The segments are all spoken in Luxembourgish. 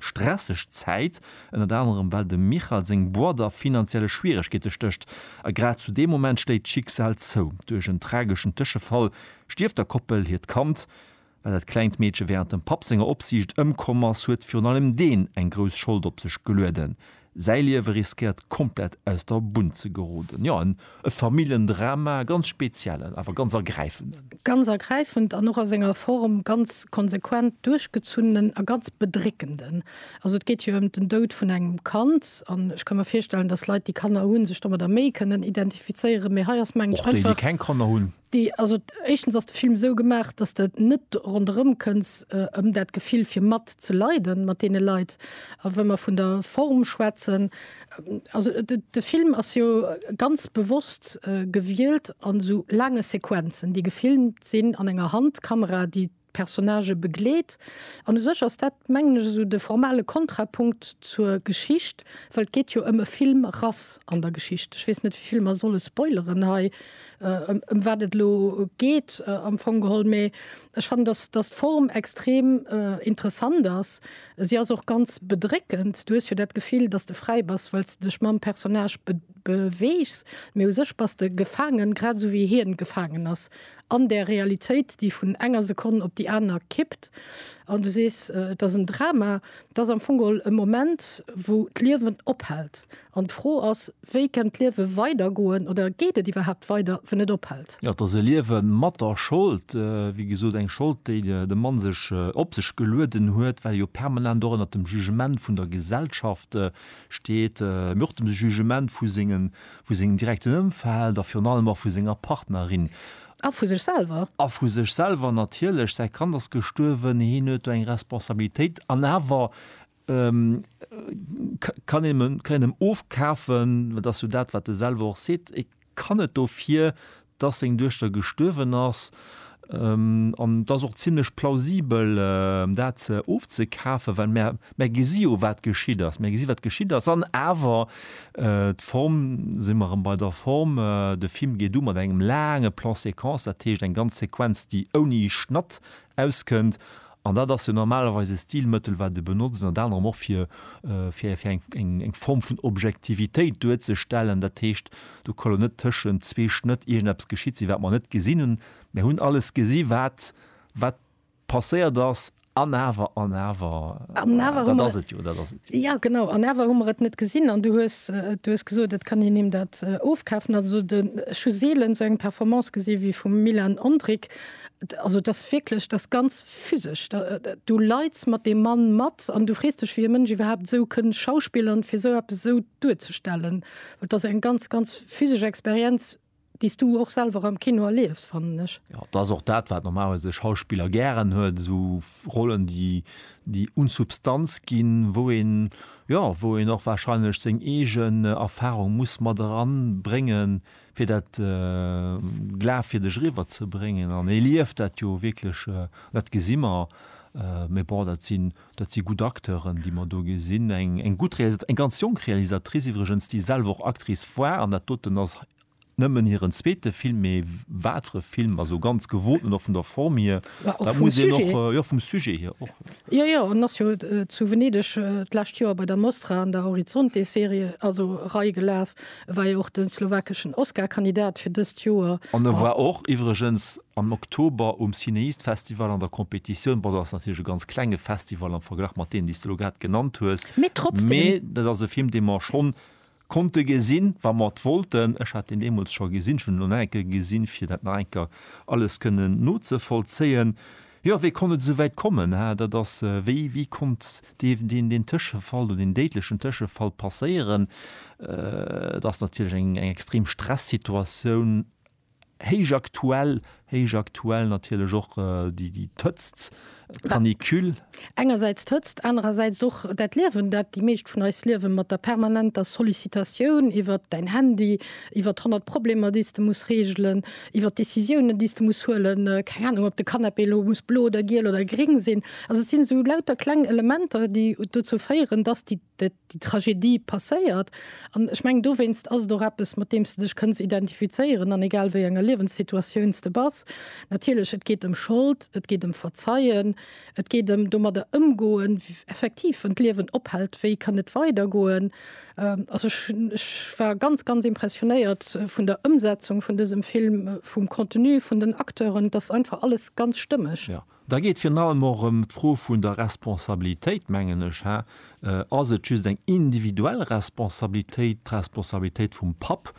stresseg Zäit, ënnert anerem well dem Michal seng Boîte a finanzielle Schwieregkeete stécht. A grad zu deem Moment schléit d'Schicksal zou. Duerch en trageschen Tëschefall stierft der Koppel hiert Kand. Well dat klengt Meedche wärend dem Papp senger Opsiicht ëmkomm ass, huet virun allem deen eng grouss Schold op sech gelueden. Säi Liewe riskéiert komplett aus der Bunn ze geroden. Jo, en Familljendrama, e ganz speziellen, awer ganz ergräifenden. Ganz ergräifend an och a senger Form ganz konsequent duerchgezunnenen a ganz bedréckenden. Also et geet jo ëm den Doud vun engem Kand an ech ka mir virstellen, datt Leit, déi Kanner hunn, sech domadder méi kënnen identifizéieren, mee hei ass, mengen ech, einfach. Och déi, déi keng Kanner hunn. Déi, also éischtens ass de Film esou gemaach, dass de net ronderëm kënns ëm dat Gefill fir mat ze leiden mat deene Leit. A wa mer vun der Form schwätzen, also de Film ass jo ganz bewosst gewielt an esou laange Sequenzen, déi gefilmt sinn an enger Handkamera, déi, Personnagë begleet. An u sech ass dat, mengen ech, esou de formale Kontrapunkt zur Geschicht, well et geet jo ëm e Filmrass an der Geschicht. Ech weess net, wéi vill mer solle spoileren hei, ëm wat et elo geet am Fong geholl. Mee ech fannen, datt, datt d'Form extrem interessant ass. Si ass och ganz bedréckend. Du hues jo dat Gefill, datt s de fräi bass, well s de dech mam Personnage beweegs. Mee u sech bass de gefaangen, grad esou wéi hien gefaangen ass. an där Realitéit, déi vun enger Sekonn op déi aner kippt, an du sees, et ass en Drama, et ass am Fong geholl e Moment, wou d'Liewen ophält. An d'Fro ass, wéi kennt d'Liewe weidergoen oder geet et iwwerhaapt weider, wann et ophält? Jo, et ass e Liewe mat der Schold, wéi gesot, eng Schold, déi de Mann sech op sech gelueden huet, well e jo permanent och ënnert dem Jugement vun der Gesellschaft steet, mee och dem Jugement vu senge Vu sengem direkten Ëmfeld a virun allem och vu senger Partnerin. A vu sech selwer. A vu sech selwer natierlech. Säi Kand ass gestuerwen, hien huet do eng Responsabilitéit. An awer kann een him ofkafen, dat ass jo dat, wat e selwer och seet, e kann et dofir dass seng Duechter gestuerwen ass. An et ass och zimlech plausibel, dat ofzekafen, well mär gesi jo, wat geschitt ass. Mär gesi wat geschitt ass. An awer, d'Form, si mer erëm bei der Form, de Film geet u mat engem laange Plan-séquence, dat heescht eng ganz Sequenz, déi ouni Schnatt auskënnt. An dat ass jo normalerweis e Stilmëttel, wat e benotzt, ënnert anerem och fir, fir, fir eng, eng Form vun Objektivitéit duerzestellen. Dat heescht, do ka lo net tëschent zwee Schnëtt iergendeppes geschitt sinn, wat mer net gesinn hunn. Mir hunn alles gesi wat, wat passéiert ass. An awer, an awer, dat ass et jo, dat ass et jo. Jo, genau. An awer hu mer et net gesinn. An du hues, du hues gesot, et kann een him dat ofkafen. Also de, ech hu seelen esou eng Performance gesi wéi vum Milan Ondrick, Also et ass wierklech, et ass ganz physesch. Du leits mat deem Mann mat an du frees dech, wéi e Mënsch iwwerhaapt esou kënn schauspillern, fir esou eppes esou duerzestellen. Et ass eng ganz, ganz physesch Experienz, déi s du och selwer am Kino erliefs, fannen ech. Jo, et ass och dat, wat normalerweis de Schauspiller gären huet, esou Rollen, déi, déi un Substanz ginn, wou een, jo, wou een och warscheinlech seng eegen Erfarung muss mat eranbréngen, fir dat glafwierdeg eriwwer ze bréngen an e lieft dat jo wierklech, dat gesi mer, mä bon, dat sinn, dat si gutt Acteuren, déi mer do gesinn, eng, eng gutt Realisat-, eng ganz jonk Realisatrice iwwregens, déi selwer och Actrice war an dat doten ass nëmmen hiren zweete Film, mä wat fir e Film, also ganz gewoten och vun der Form hier, dat muss een och, jo, vum Sujet hier och. Jo, jo, en ass jo zu Venedeg d'lescht Joer bei der Mostra an der Horizonte-Serie, also Rei, gelaf, E war jo och de slowakeschen Oscar-Kandidat fir dëst Joer. An e war och iwwregens am Oktober um Cinéist-Festival an der Competitioun. Bon, dat ass natierlech e ganz klenge Festival am Verglach mat deenen, déi s de elo grad genannt hues. Mee trotzdem. Mee dat ass e Film, dee mer schonn konnte gesinn, wa mer et wollten. Ech hat deen deemools scho gesinn. Ech hunn en elo nach eng Kéier gesinn, fir dat nach eng Kéier alles kënnen nozevollzéien. Jo, wéi konnt et esou wäit kommen? Hat, dat ass, wéi, wéi konnt. Dierf deen deen Tëschefall oder deen déidlechen Tëschefall passéieren, et ass natierlech eng extrem Stressituatioun, héich aktuell, héich aktuell natierlech och déi d'Hëtzt, d'Canicule. Engersäits d'Hëtzt, anerersäits och dat Liewen, dat déi meescht vun eis liewen, mat der permanenter Sollicitatioun iwwert däin Handy, iwwert honnert Problemer, déi s de muss reegelen. iwwer d'Décisiounen, déi s de muss huelen, keng Anung, ob de Canapé elo muss blo oder giel oder gréng sinn. Also et sinn esou lauter kleng Elementer, déi dozou féieren, dass déi, déi Tragedie passéiert. An ech mengen, dowéinst ass et och eppes, mat deem s de dech kënns identifizéieren, an egal wéi enger Liewenssituatioun s de bass. Natierlech, et geet ëm Schold, et geet ëm Verzeien, Et geet ëm domadder ëmgoen, effektiv, wann d'Liewen ophält, wéi kann et weidergoen? Also ech, ech war ganz, ganz impressionéiert vun der Ëmsetzung vun dësem Film, vum Contenu, vun den Acteuren. Et ass einfach alles ganz stëmmeg. Jo, da geet virun allem och ëm d'Fro vun der Responsabilitéit, mengen ech. Hä? Ass et just eng individuell Responsabilitéit, d'Responsabilitéit vum Papp,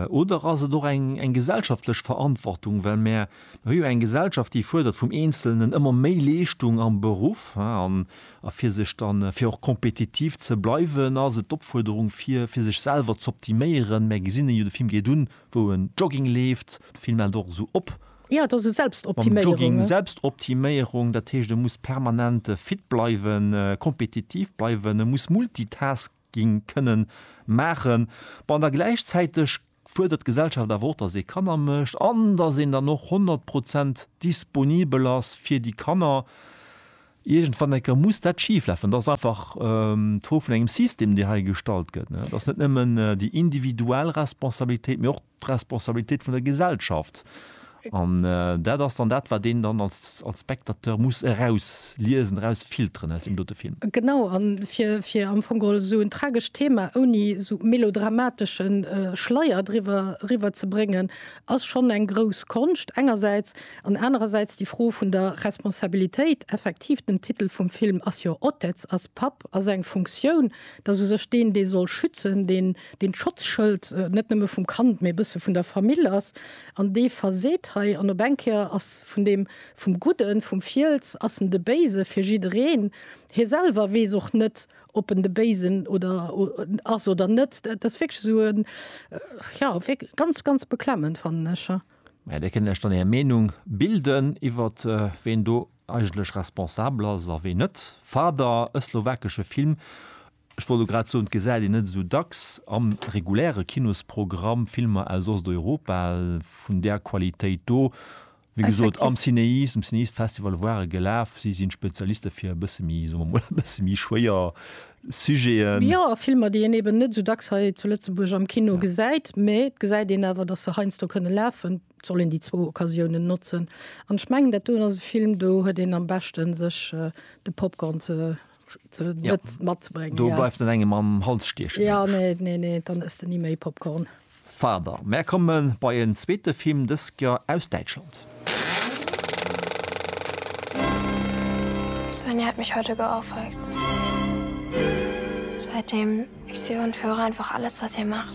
oder ass et och eng, eng gesellschaftlech Verantwortung, well mär, Mir hu jo eng Gesellschaft, déi fuerdert vum Eenzelnen ëmmer méi Leeschtung am Beruff. A fir sech dann, fir och kompetitiv ze bleiwen, ass et d'Opfuerderung, fir fir sech selwer z'optiméieren. Mär gesinn en jo, de Film geet un, wou en Jogging leeft. De Film ennt och esou op. Jo, et ass esou Selbstoptiméierung. Mam Jogging, Selbstoptiméierung. Dat heescht, e muss permanent fit bleiwen, kompetitiv bleiwen, e muss multitasken. ginn kënnen maachen, bon, da gläichzäiteg fuerdert d'Gesellschaft awer och, dass ee Kanner mécht an dass een dann och 100 Prozent disponibel ass fir déi Kanner. Iergendwann eng Kéier muss dat schiflafen. Dat ass einfach d'Fro vun engem System, dee hei gestallt gëtt. Et ass net nëmmen déi individuell Responsabilitéit, mee och d'Responsabilitéit vun der Gesellschaft. An dat ass dann dat, wat een dann als Spectateur muss erausliesen, erausfilteren aus deem dote Film. Genau, a fir am Fong geholl esou en tragescht Thema ouni esou melodramatesche Schleier driwwer eriwwer ze bréngen, ass schonn eng grouss Konscht engersäits, an anerersäits déi Fro vun der Responsabilitéit. Effektiv, den Titel vum Film ass jo Otec, ass Papp, ass eng Funktioun, dass u sech deen, dee soll schützen, deen dee Schotzschëld net nëmme vum Kand, mee e bësse vun der Famill ass, an dee verseet hei, an op eng Kéier ass vun deem, vum Gudden, vum Fiels ass en de Béise fir jiddereen. Hie selwer weess och net, ob en de Béisen oder ass oder net. Dat ass wierklech esou e, jo, wierklech ganz, ganz beklemmend, fannen ech. Mä Dir kënnt lech dann Är Meenung bilden iwwert ween do eigentlech responsabel ass a ween net. Fader, e slowakesche Film, ech wollt elo grad soen, et gesäit een net esou dacks am reguläre Kinosprogramm, Filmer aus Osteuropa vun där Qualitéit do, wéi gesot am CinEast, um CinEast Festival ware gelaf, si sinn Spezialiste fir e bësse méi, soe mer mol, e bësse méi schwéier Sujeten. Jo, a Filmer, déi een eben net esou dacks hei zu Lëtzebuerg am Kino gesäit, mä et gesäit een awer, datt se heiansdo kënne lafen. soll een déi zwou Occasiounen notzen. An ech mengen, dat doen ass e Film, do huet een am beschten, sech äh, de Popcorn ze ze ja. net matzebrengen. Do ja. bleift en engem am Hals stiechen. Ja, nee, nee, nee, dann ëss de ni méi Popcorn. Fader. Mer komme bei en zweete Film dësker aus Däitschland. Svenja hat mich heute geohrfeigt. Seitdem ich sehe und höre einfach alles, was ihr macht.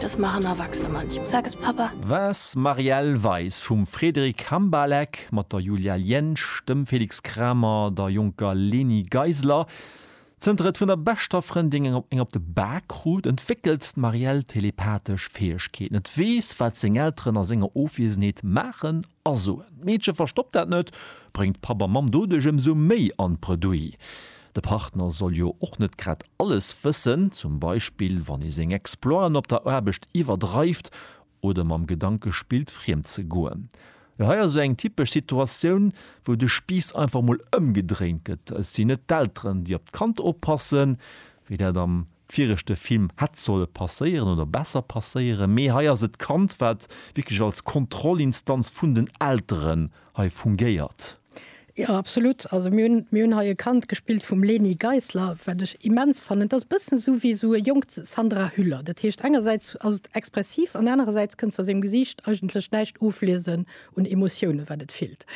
Das machen Erwachsene manchmal. Sag es Papa. Wars Marielle Weis vum Frédéric Hambalek mat der Julia Liensch, dem Félix Kramer, der jonker Leni Geisler. Zënter et vun der beschter Frëndin eng op de Bak krut, entwéckelt d'Marielle telepathesch Fäegkeeten. Et weess, wat seng Elteren a senger Ofwiesenheet maachen A soen, d'Meedche verstoppt dat net, bréngt Papp a Mamm doduerch ëmsou méi an d'Bredouille. De Partner soll jo och net grad alles wëssen, zum Beispill wann ee seng Exploiten op der Aarbecht iwwerdreift oder mam Gedanke spillt, friem ze goen. Jo, hei ass esou eng typesch Situatioun, wou de Spiiss einfach mol ëmgedréint gëtt. Et sinn net d'Elteren, déi op d'Kand oppassen, wéi dat am. viregte Film hätt solle passéieren oder besser passéieren, mee hei ass et d'Kand wat wierklech als Kontrollinstanz vun den Elteren hei fungéiert. Jo absolut, also mir hunn mir hunn hei e Kand gespillt vum Leni Geisler wat ech immens fannen, et ass e bëssen esou wéi esou e jonkt Sandra Hüller, dat heescht engersäits ass et expressiv an anerersäits kënnst de a sengem Gesiicht eigentlech näischt ofliesen un Emotiounen wat et fillt.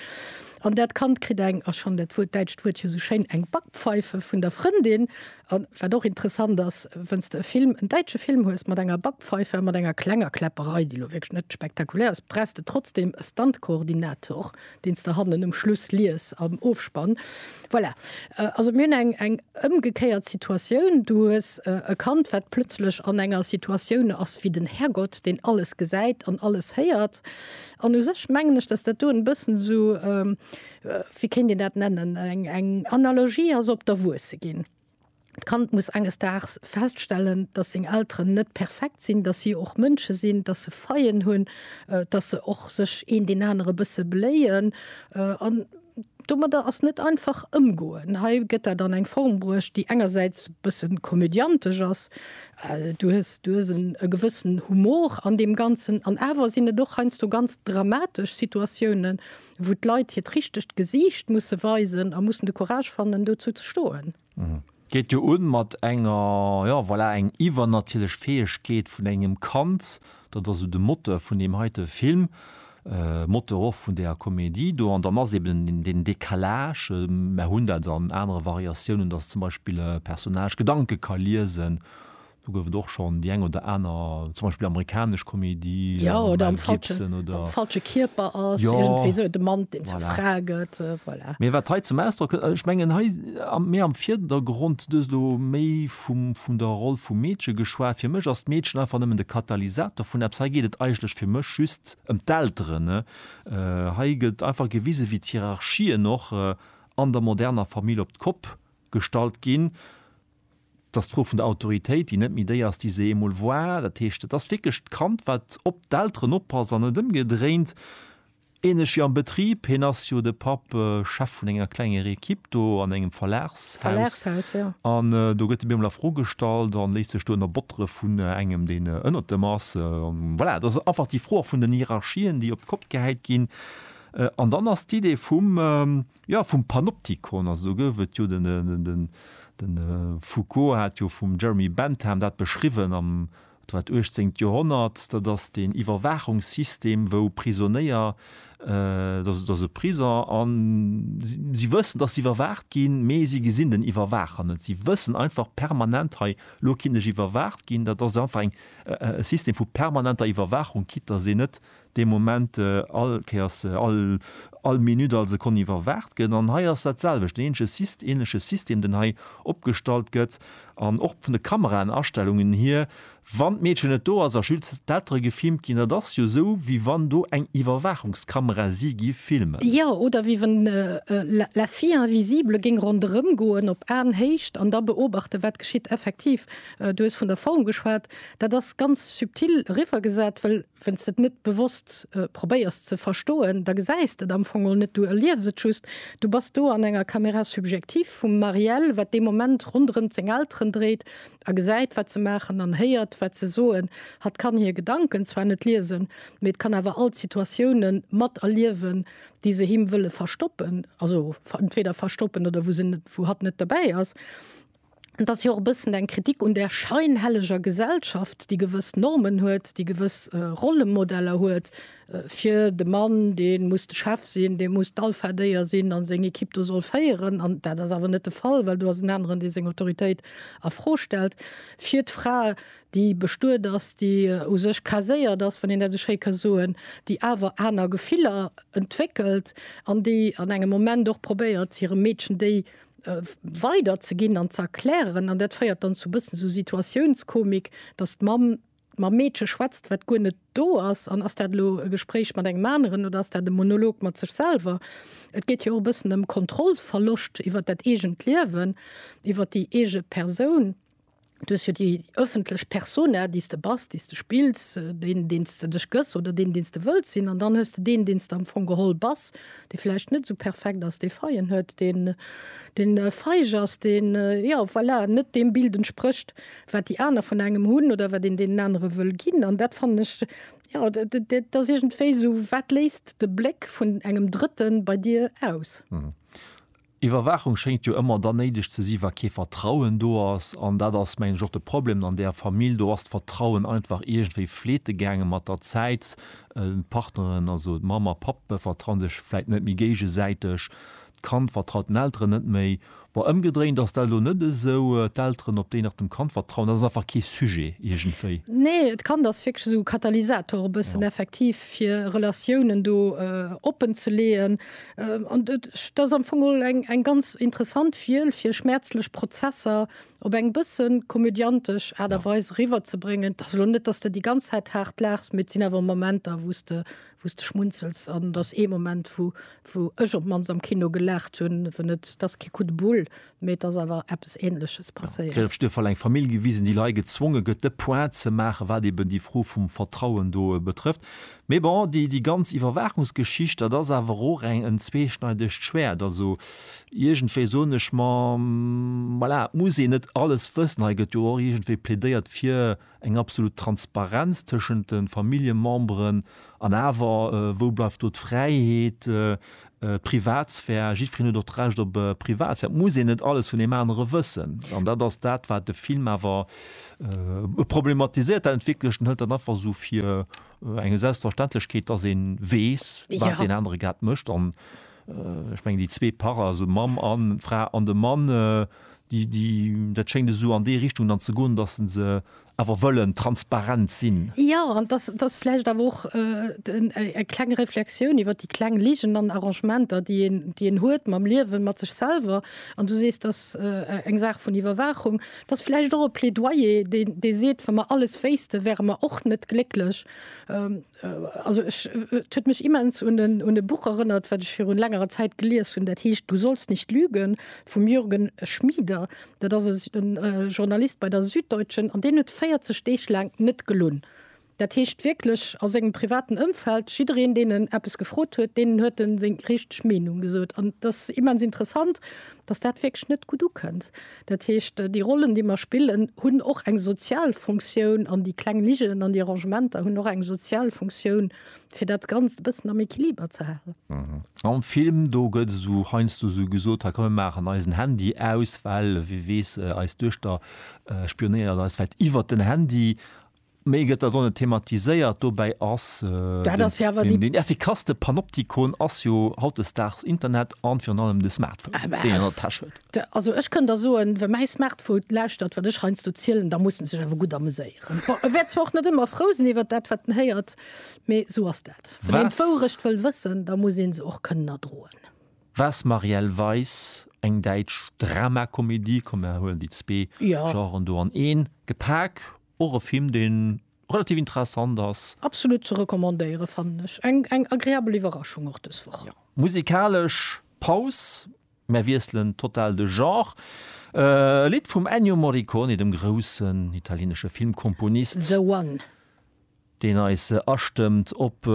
An dat Kand kritt eng, ech fannen dat Wuert, däitscht Wuert jo esou schéin, eng Backpfeife vun der Frëndin A wat och interessant ass, wann s de e Film, en däitsche Film hues mat enger Backpfeife a mat enger klenger Kläpperei, déi elo wierklech net spektakulär ass, brauchs de trotzdem e Stunt-Koordinator, deen s de hannen um Schluss lies am Ofspann. Voilà. Also mir hunn eng ëmgekéiert Situatioun. Du hues e Kand, wat plötzlech an enger Situatioun ass wéi den Härgott, deen alles gesäit an alles héiert. An u sech mengen ech, datt dat do e bëssen esou, wéi kéint een dat nennen, eng Analogie ass op d'Erwuesse ginn. D'Kand muss enges Daags feststellen, dass seng Elteren net perfekt sinn, dass si och Mënsche sinn, dass se Faillen hunn, dass se och sech een deen anere bësse beléien an domadder ass net einfach ëmgoen. Hei gëtt dat an eng Form bruecht, déi engersäits e bësse komödiantesch ass, du hues, du hues e gewëssen Humor an deem Ganzen an awer sinn et och heiansdo ganz dramatesch Situatiounen, wou d'Leit hiert richtegt Gesiicht musse weisen a mussen de Courage fannen, dozou ze stoen. Geet jo un mat enger, jo, voilà, eng iwwernatierlech Fäegkeet vun engem Kand. Dat ass esou de Moteur vun deem heite Film, Moteur och vun där Komedie do. An dann ass eben deen Décalage, mer hunn dat an anere Variatiounen, dass zum Beispill e Personnage Gedanke ka liesen, Do gouf et och schonn déi eng oder aner, zum Beispill amerikanesch Komedie, Ja, oder Mel am falsche, Gibson am oder. falsche Kierper ass, Ja. iergendwéi esou de Mann, deen zur Voilà. Fra gëtt, äh, voilà. Mee wat hei zum Ausdrock kënnt, ech mengen hei am, méi am Virdergrond, du hues elo méi vum, vun der Roll vum Meedche geschwat, fir mech ass d'Meedchen einfach nëmmen de Katalysator vun eppes. Hei geet et eigentlech fir mech just ëm d'Elteren, ne? Äh, hei gëtt einfach gewise wéi d'Hierarchien och an der moderner Famill op d'Kopp gestallt ginn. Et ass d'Fro vun der Autoritéit, déi net méi déi ass, déi se eemol war. Dat heescht, et ass wierklech d'Kand, wat op d'Elteren oppasst an net ëmgedréint. Ähnlech wéi am Betrib, hien ass jo, de Papp, Chef vun enger klenger Equipe do an engem Verlagshaus. An do gëtt e bemol a Fro gestallt a léisst sech do ënnerbottere vun engem, deen ënnert em ass. Voilà, et ass einfach déi Fro och vun den Hierarchien, déi op d'Kopp gehäit ginn. An dann ass d'Idee vum. Jo, vum Panoptikon, also do gouf et jo den, de Foucault hat jo vum Jeremy Bentham dat beschriwwen am, wat war et, uechtzéngt Joerhonnert, dat ass deen Iwwerwaachungssystem, wou Prisonéier, dat ass e Prisong a si wëssen, datt si iwwerwaacht ginn, mee si gesinn den Iwwerwaacher net. Si wëssen einfach permanent, hei, lo kinn ech iwwerwaacht ginn. Dat ass einfach e System vu permanenter Iwwerwaachung, quitt datt een net dee Moment all Kéiers, all Minutt, all Sekonn iwwerwaacht gëtt. An hei ass dat selwecht, deen eenzege, änleche System, deen hei opgestallt gëtt. An och vun de Kameraenastellungen hier, wann d'Meedchen net do ass a just d'Eltere gefilmt ginn, dat ass jo esou, wéi wann do eng Iwwerwaachungskamera si géif filmen. Jo, oder wéi wann la fille invisible géing ronderëm goen op Aenhéicht an da beobachten, wat geschitt. Effektiv, du hues vun der Form geschwat. Dat ass ganz subtil eriwwer gesat, well Wenn s de et net bewosst probéiers ze verstoen, da gesäis de et am Fong och net, du erliefs et just. Du bass do an enger Caméra subjective vum Marielle, wat dee Moment ronderëmt seng Elteren dréit a gesäit, wat se maachen an héiert, wat se soen. Hatt kann hir Gedanken zwar net liesen, mee et kann awer all d'Situatiounen mat erliewen, déi se him wëlle verstoppen, also entweder verstoppen oder wou se net, wou hatt net dobäi ass. Et ass jo och e bëssen eng Kritik un där scheinhelleger Gesellschaft, déi gewëss Normen huet, déi gewëss Rollemodeller huet fir de Mann, dee muss de Chef sinn, dee muss d'Alpha-Déier sinn a seng Ekipp do soll féieren. An dat ass awer net de Fall, well do ass en aneren, dee seng Autoritéit a Fro stellt. Fir d'Fra, déi bestuet ass, déi u sech caséiert ass, wann een dat esou schéi ka soen, déi awer aner Gefiller entwéckelt an déi an engem Moment och probéiert, hirem Meedchen déi äh, weider ze ginn an ze erklären. An dat féiert dann zu bëssen so Situatiounskomik, datt d'Mamm mam Meedche schwätzt, wat guer net do ass. An ass dat elo e Gespréich mat engem aneren oder ass dat e Monolog mat sech selwer? Et geet jo och e bëssen ëm Kontrollverloscht iwwer dat eegent Liewen, iwwer déi eege Persoun. Du hues jo déi ëffentlech Persona, déi s de bass, déi s de spills, deen, deen s de dech gëss oder deen, deen s de wëlls sinn. An dann hues de deen, deen s de am Fong geholl bass, dee vläicht net esou perfekt ass, dee Faillen huet, deen, deen feig ass, deen, jo, voilà, net deem Bild entsprécht, wat déi aner vun engem hunn oder wat een deenen anere wëll ginn. An dat fannen ech, jo, dat ass iergendwéi esou, wat léist de Bléck vun engem Drëtten bei dir aus? Iwwerwaachung schéngt jo ëmmer dann néideg ze si wa kee Vertrauen do ass. An dat ass mengen ech och de Problem an där Famill, do ass d'Vertrauen einfach iergendwéi fleete gaange mat der Zäit. D'Partneren, also d'Mamm a Papp vertraue sech vläit net méi géigesäiteg, d'Kand vertraut den Elteren net méi. Bon, ëmgedréint ass dat elo net esou, d'Elteren op déi nach dem Kand vertrauen, dat ass einfach kee Sujet iergendwéi. Nee, d'Kand ass wierklech esou e Katalysator e bëssen effektiv fir Relatiounen do oppen ze leeën. Ähm, an dat ass am Fong geholl eng, eng ganz interessant Fiel, fir schmäerzlech Prozesser op eng bësse komödiantesch Aart a Weis eriwwerzebréngen. Et ass elo net, datt s de déi ganz Zäit haart laachs, mee et sinn awer Momenter, wou s de, wou s de schmunzels. An et ass ee Moment, wou, wou ech op d'mannst am Kino gelaacht hunn, wann et, et ass kee Coup de boule, Mee et ass awer eppes Ähnleches passéiert. Gréif Stëf hat eng Famill gewisen, déi lei gezwonge gëtt, de Point ze maachen, wat eben déi Fro vum Vertrauen do betrëfft. Mee bon, déi, déi ganz Iwwerwaachungsgeschicht, dat ass awer och eng, en zweeschneidegt Schwäert. Also, iergendwéi soen ech mer, voilà, et muss een net alles wëssen. Hei gëtt jo och iergendwéi plädéiert fir. Eng absolut Transparenz tëschent de Familljememberen an awer, wou bleift do d'Fräiheet, d'Privatsphär? Jiddwereen huet och d'Recht op Privatsphär. Et muss een net alles vun deem anere wëssen. An dat ass dat, wat de Film awer problematiséiert. Dat entwéckelt, en hëlt dat einfach esou fir eng Selbstverständlechkeet, dass ee weess, wat deen anere grad mécht. Ech mengen déi zwee Pare, also Mamm an Fra an de Mann, déi, déi, dat schéngt esou an déi Richtung dann ze goen, datt se se awer wëllen transparent sinn. Jo, an datt, datt vläicht awer och eng kleng Reflexioun iwwer déi kleng Ligen an Arrangementer, déi een, déi een huet mam Liewen, mat sech selwer. An du sees, datt eng Saach vun Iwwerwaachung, datt vläicht och e Plädoyer, dee, dee seet, wa mer alles wéisste, wäre mer och net glécklech. Also ech, et huet mech immens un en, un e Buch erënnert, wat ech virun längerer Zäit gelies hunn, dat heescht Du sollst nicht lügen vum Jürgen Schmieder. Dat ass e Journalist bei der Süddeutschen an deen huet 40 Deeg laang net gelunn. Dat heescht wierklech a sengem privaten Ëmfeld, jiddereen deen en eppes gefrot huet, deenen huet en seng richteg Meenung gesot. An dat ass immens interessant, datt dat wierklech net gutt ukënnt. Dat heescht, déi Rollen, déi mer spillen, hunn och eng sozial Funktioun an déi kleng Liggen an déi Arrangementer hunn och eng sozial Funktioun, fir dat Ganzt e bëssen am Equiliber ze halen. Am Film do gëtt esou heiansdo esou gesot, hei komm mir maachen eisen Handy aus, well wie weess, eis Duechter spionéiert eis vläicht iwwert den Handy. Méi gëtt dat och net thematiséiert. Dobäi ass deen effikasste Panoptikon ass jo hautdesdaags Internet an virun allem de Smartphone, deen een an der Täsch huet. Also ech kënn der soen, wa mäi Smartphone lauschtert, wat ech heiansdo zielen, da muss en sech awer gutt ameséieren. Bon, e wäert zwar och net ëmmer frou sinn iwwert dat, wat en héiert, mee sou ass dat. Wann een d'Wourecht wëll wëssen, da muss ee se och kënnen erdroen. Was Marielle Weiss, eng däitsch Dramakomedie, komm mer huelen déi zwee Genren do an een gepak. Och e Film deen relativ interessant ass. Absolut ze recommandéieren fannen ech. Eng eng agreabel Iwwerraschung och dës Woch. Jo. Musikalesch Paus, mär wiesselen total de Genre. E Lidd vum Ennio Morricone, dem groussen italienesche Filmkomponist. The One. Deen eis astëmmt op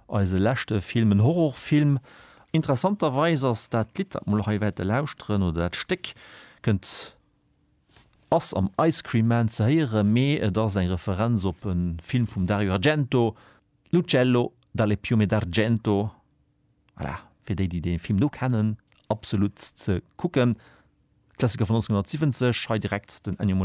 eise leschte Film, en Horrorfilm. Interessanterweis ass dat Lidd, dat mol hei wäerte lauschteren, oder dat Stéck, kënnt Ass am Ice Cream Man ze héieren, mee et ass eng Referenz op e Film vum Dario Argento, L'uccello dalle piume d'argento. Voilà, fir déi, déi dee Film do kennen, absolut ze kucken. Klassiker vun 1970, hei direkt den Ennio Morricone.